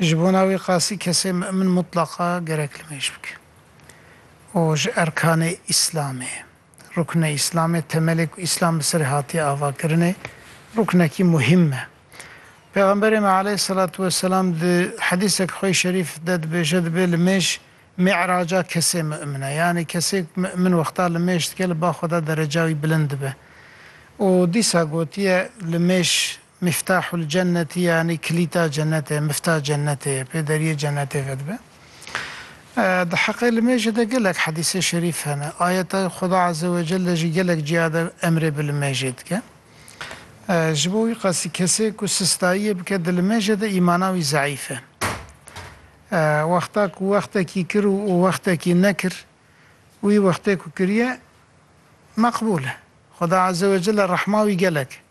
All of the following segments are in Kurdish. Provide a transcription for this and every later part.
Ji bona wê qasî kesê mimin mutlaqa gerek li mêj bike û ji erkanê Îslamê, ruknê Îslamê, temelê ku Îslam bi serê hatiye avakirinê, ruknekî muhîm e. Pêxemberê me aleyhîsselatu weselam di hedîseke xwe yê şerîf de dibêje dibe li mêj mî'raca kesê mimin e. Yanî kesê ku mimin wexta li mêj dike li ba xwe de dereca wî bilind dibe. Û dîsa gotiye li mêj Miftahul cenneti yanî kilîta cennetê, mifta cennetê ye, pê deriyê cennetê vedibe. Di heqê li mêjê de gelek hedîsê şerîf hene. Ayetayê Xweda Azewecel de jî gelek ciya de emrê bi li mêjê dike. Ji bo wî qasî kesê ku sistayiyê bike di li mêjê de îmana wî zeîf e. Wexta ku wextekî kir û wextekî nekir, wî wextê ku kiriye meqbûl e. Xweda Azewecel e rehma wî gelek e.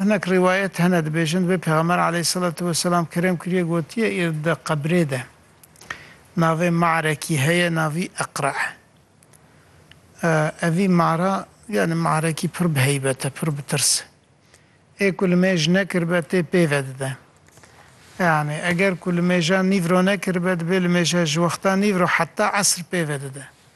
Hinek rîwayet hene dibêjin divê Pêxember aleyhîsselatu weselam kerem kirîye gotîye îr di qebrê de navê Marekî heye navî Iqra. Evî Mara yanî Marekî pir bi heybet e, pir bi tirs e. Ê ku li mêj nekiribe tê pêve dide. Yanî eger ku li mêja nîv ro nekiribe dibê li mêja ji wexta nîv ro heta esr pêve dide.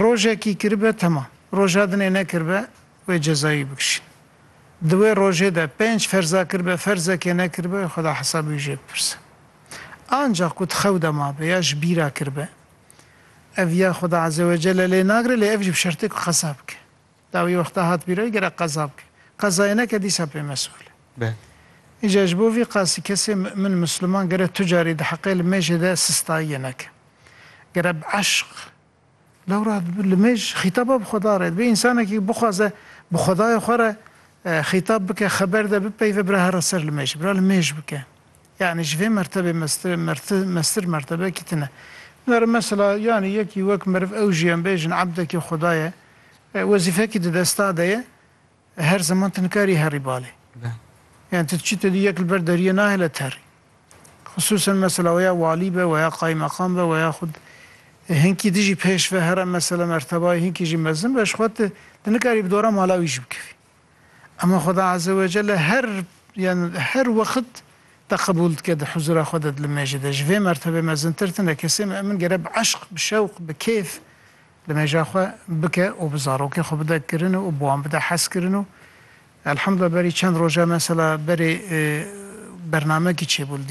Rojekî kiribe temam. Roja dinê nekiribe wê cezayî bikişîn. Di wê rojê de pênc ferza kiribe ferzekê nekiribe wê xweda hesabê wî jê bipirse. Ancax ku di xew de mabe ya ji bîra kiribe ev ya xweda ezewecelle lê nagire lê ev jî bi şertê ku qeza bike. Dawî wexta hat bîroyê gerek qeza bike. Qezayê neke dîsa pê mesûl e. Belê. Îca ji bo vî qasî kesê mu'min, musliman, gere tu carî di heqê li mêjê de sistayiyê neke. Gere bi eşq, lewra li mêj xîtaba bi Xweda re dibe. Însanekî bixwaze bi Xwedayê xwe re xîtab bike, xeber de bipeyve bira here ser li mêjê, bira li mêj bike. Yanî ji vê mertebê mestir mestir mertebekî tune. Nare mesela yanî yekî wek meriv ew jî em bêjin ebdekî xuda ye, wezîfekî di desta de ye, her zeman tu nikarî herî balê. Yanî tu diçî tu dî yek li ber deriyê nahêle terî. Xisûsen mesela weya walî be, weya qaymeqam be, weya xwe hinkî dijî pêş ve here mesela mertebayê hinkî jî mezin be ji xwe tu nikarî bi dora mala wî jî bikevî. Ema Xweda Azewecelle her yan her wext te qebûl dike di huzûra xwe de di li mêjê de. Ji vê mertebê mezintir tune. Kesê mi'min gere bi eşq, bi şewq, bi kêf li mêja xwe bike û bi zarokê xwe bide kirin û bi wan bide hezkirin û Elhamdulillah berî çend roja mesela berê bernamekî çêbû li diyar.